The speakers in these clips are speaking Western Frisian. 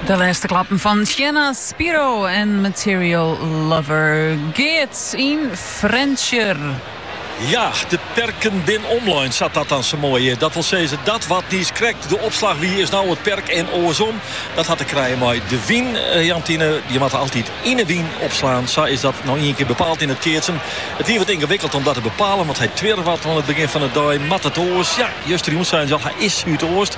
De lêste klappen fan Sienna Spiro en Material Lover. Geert yn Frjentsjer. Ja, de perken bin omlein, sa't dat dan sa moai hjit. Dat wol sizze, dat wat niis krekt de opslach wie, is no it perk en oarsom. Dat hat te krijen mei de wyn, eh, Jantine. Je moatte altyd yn 'e wyn opslaan. Sa is dat no ien kear bepaald yn it keatsen. It wie wat yngewikkeld om dat te bepalen, want hy twirre wat oan it begjin fan 'e dei. Moat it oars? Ja, juster jûn seinen se al, hy is súdoast.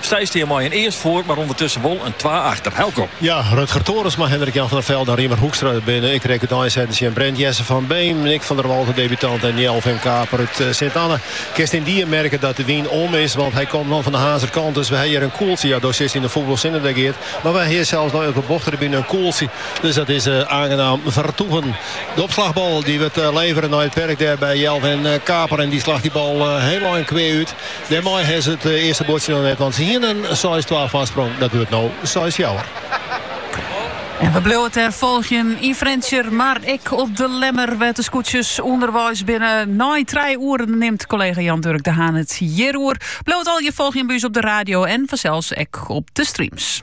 Sy stean mei in earst foar, mar ûndertusken wol in twa achter. Helco. Ja, Rutger Torensma, Hendrik Jan van der Velde en Riemer Hoekstra binne ek drekt útein setten tsjin Brent Jesse van Beem, Nick van der Walt, de debutant, en Jelvin Kaper út Sint-Anne. Kinst yndie merke dat de wyn om is, want hy komt no fan de Harnzer kant. Dus we ha hjir in koeltsje. Ja, do sitst yn de fûle sinne dêr, Geert. Mar we ha hjir sels no op de bochttribune in koeltsje. Dus dat is aangenaam vertoeven. De opslagbal die wurdt levere nei it perk dêr by Jelvin Kaper en die slacht die bal hiel ein kwea út. Dêrmei ha se it earste buordsje noch net oan. Se hiene in seis twa foarsprong, dat wurdt no seis fjouwer. En we bliuwe it dêr folgjen yn Frjentsjer, mar ek op De Lemmer, wêr't de skûtsjes ûnderweis binne. Nei trije oeren nimt kollega Jan Durk de Haan it hjir oer. Bliuw it allegear folgjen by ús op de radio en fansels ek op de streams.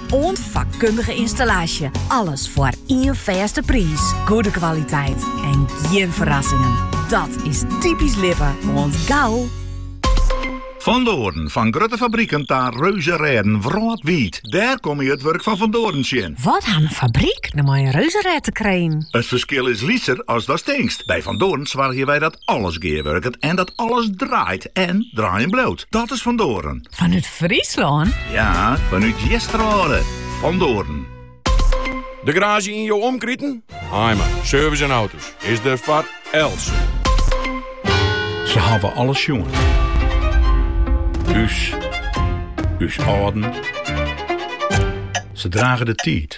Oant fakkundige ynstallaasje. Alles foar ien fêste priis. Goede kwaliteit en gjin ferrassingen. Dat is typisch Lippe. Oant gau! Van Doren, fan grutte fabriken ta reuzerêden wrâldwiid. Dêr komme je it wurk fan Van Doren tsjin. Wat hat in fabryk no mei in reuzerêd te krijen? It ferskil is lytser as datst tinkst. By Van Doren soargje wy dat alles gearwurket en dat alles draait en draaien bliuwt. Dat is Van Doren. Fanút Fryslân? Ja, fanút Easterwâlde, Van Doren. De garaazje yn jo omkriten? Heima, service en auto's is der foar elts. Se hawwe alles sjoen. Us, ús âlden. Se drage de tiid.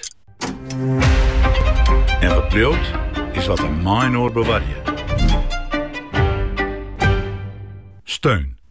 En dat byld is wat we mei-inoar bewarje. Steun.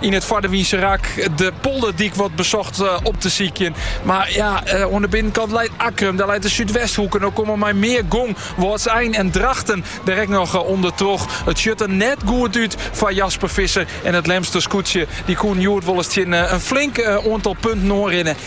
Yn it foardewynse rak de polderdyk wat besocht eh, op te sykjen. Mar ja, eh, oan de binnenkant leit Akkrum, dêr leit de Súdwesthoek. En dan komme mei mear gong Wâldsein en Drachten direkt noch eh, ûndertroch. It sjocht der net goed út foar Jasper Visser. En it Lemster skûtsje, dy koe hjoed wolris tsjin in flink oantal punten oanrinne.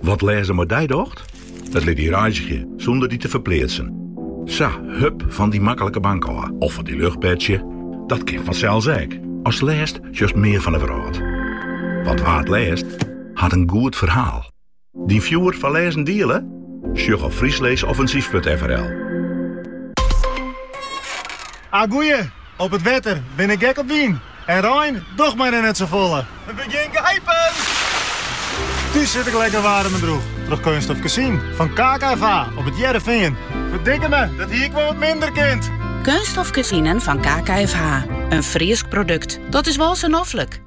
Wat lêzen mei dy docht? It lit dy reizgje sûnder dy te ferpleatsen. Sa, hup fan dyn maklike bank ôf of fan dyn luchtbedsje. Dat kin fansels ek. As lêst sjochst mear fan 'e wrâld. Want wa't lêst, hat in goed ferhaal. Dyn fjoer foar lêzen diele? Sjoch op frysklêsoffinsyf.frl. A goeie! Op it wetter bin ik gek op wyn. En rein docht my der net sa folle. We begjin gijpen! Thús sit ik lekker waarm en droech troch keunststof kezinen fan KKFH op it Hearrenfean. Ferdikkeme, dat hie ik wol wat minder kind. Keunststof kezinen fan KKFH. In Frysk produkt, dat is wol sa noflik!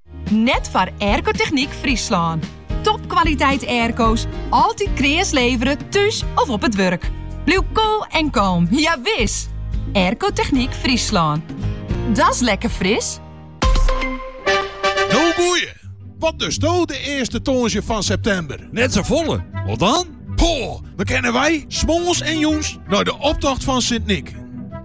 Net foar Aircotechniek Fryslân. Topkwaliteit airco's, altyd kreas levere thús of op it wurk. Bliuw koel en kalm, ja wis! Aircotechniek Fryslân. Dat's lekker fris! No goeie! Wat dosto de earste tongersdei fan septimber? Net sa folle, wat dan? Poh, dan kinne wy, smoarns en jûns, nei de optocht fan Sint Nyk.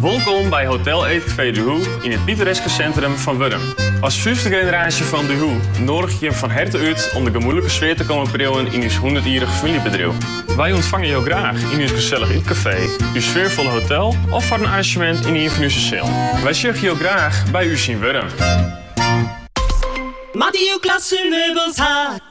Wolkom by Hotel Eetcafé Duhoux yn it pittoreske sintrum fan Wurdum. As fyfde generaasje fan Duhoux noadigje jim fan herte út om de gemoedlike sfear te kommen priuwen yn ús hûndertjierrich famyljebedriuw. Wy ûntfange jo graach yn ús gesellich ytkafee, ús sfearfolle hotel of foar in arranzjemint yn ien fan ús sealen. Wy sjogge jo graach by ús yn Wurdum. Moatte jo klasse meubels ha?